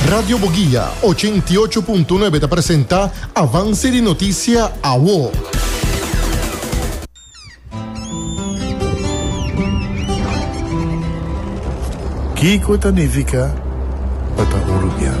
Radio Boguia ochenta i ocho punto nuebe ta presenta Avance di Noticia Awo. Kiko ta nifica pa ta un rubian?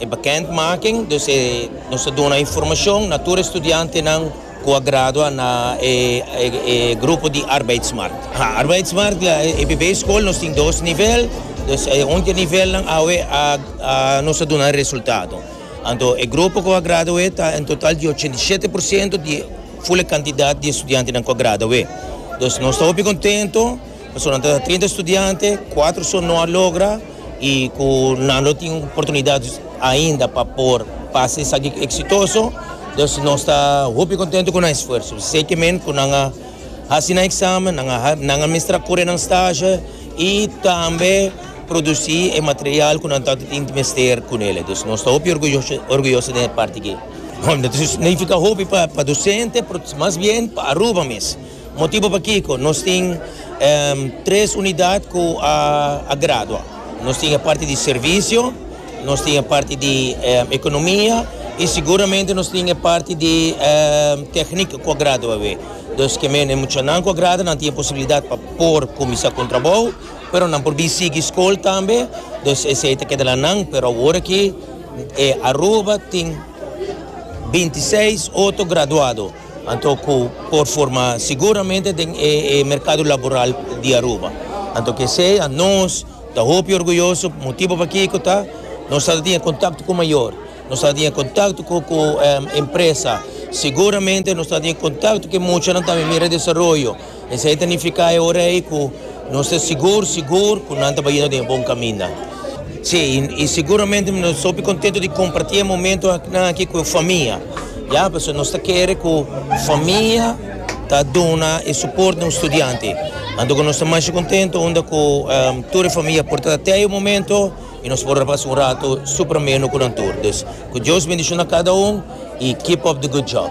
E bekendmaking, dus e, nos ta duna informashon na tur e studiantenan ku a gradua na e grupo di Arbeidsmarkt. Ha, Arbeidsmarkt la e EBB skol, nos tin dos nivel, dus e un di e nivelnan awe a nos a duna e resultado. Anto e grupo ku a gradu'é ta en total di ochenta i shete por siento di ful e kantidat di e studiantenan ku a gradu'é. Dus nos ta hopi kontento. Nosotros ta trinta estudiante, cuatro so no a logra y cu nan lo tin oportunidad ainda pa por pasa esaki exitoso, dus nos ta hopi contento cu nan esfuerzo. Sekimen cu nan a haci nan examen, nan a, nan a mester a cure nan stage y tambe produci e material cu nan tanto tin mester cu nele. Dus nos ta hopi orguyoso, orguyoso den e parti aki. No ta significa hopi pa docente, pero mas bien pa Aruba mes. Motibu pakiko nos tin tres unidat ku a gradua. Nos tin e parti di servisio, nos tin e parti di ekonomia i siguramente nos tin e parti di teknik ku a gradua awe. Dus ke mene muchanan ku a gradua nan tin e posibilidat pa por kuminsá ku un trabou, pero nan por bin sigui skol tambe, dus esei ta keda la nan. Pero awor aki Aruba tin binti seis otro graduado. Anto cu por forma siguramente den e mercado laboral di Aruba. Anto kesey a nos ta hopi orguyoso, motibo pakico ta nos a tatinga contacto cu mayor, nos a tatinga contacto cu cu empresa, siguramente nos a tatinga contacto cu e muchanan tambe mira desaroyo. Esei ta nifiká e ora ei ku nos ta sigur sigur ku nan ta bai yendo den e bon kaminda. Sí, i siguramente nos ta hopi kontentu di kompartí e momentunan akí ku e famia, ya, pasobra nos ta kere ku famia ta duna e suport na un studiante. Anto ku nos ta masha kontentu unda ku tur e famia por ta te e momento i nos por a pasa un ratu super ameno ku nan tur. Dus, ku Dios bendishona kada un i keep up the good job.